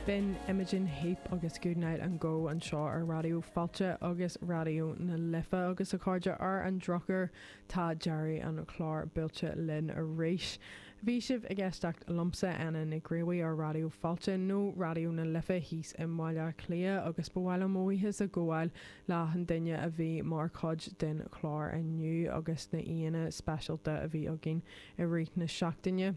B'in Imogen Heap agus Goodnight and Go anseo ar Raidió Fáilte agus Raidió na Life agus a chairde. Ar an drochuair tá deireadh an chláir buailte linn arís. Bhí sibh ag éisteacht liomsa, Áine Nic Gríobhaigh ar Raidió Fáilte, nó Raidió na Life thíos i mBaile Átha Cliath agus ba mhaith liom mo bhuíochas a ghabháil le achan duine a bhí mar chuid den chlár inniu agus na aíonna speisialta a bhí againn i rith na seachtaine.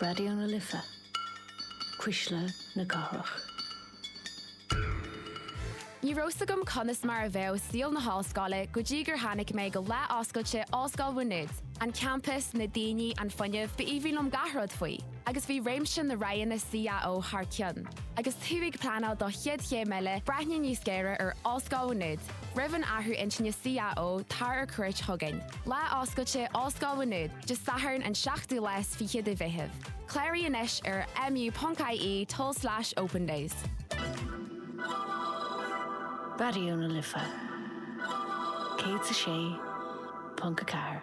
Raidió na Life, Cuisle na Cathrach. Ní raibh 's agam conas mar a bheadh saol na hollscoile go dtí gur tháinig mé go lá oscailte Ollscoil Mhá Nuad. An campus, na daoine, an fuinneamh, ba aoibhinn liom gach rud faoi. agus bhí réimse na roghanna CAO thar cionn. Agus tú ag pleanáil do chéad chéim eile, breathnaigh níos géire ar Ollscoil Mhá Nuad. Roimh an athrú intinne CAO, tar ar cuairt chugainn. Lá Oscailte Ollscoil Mhá Nuad, Dé Sathairn an 7ú lá is fiche de Mheitheamh. Cláraigh anois ar mu.ie tulslais opendays. Raidió na Life 106.4.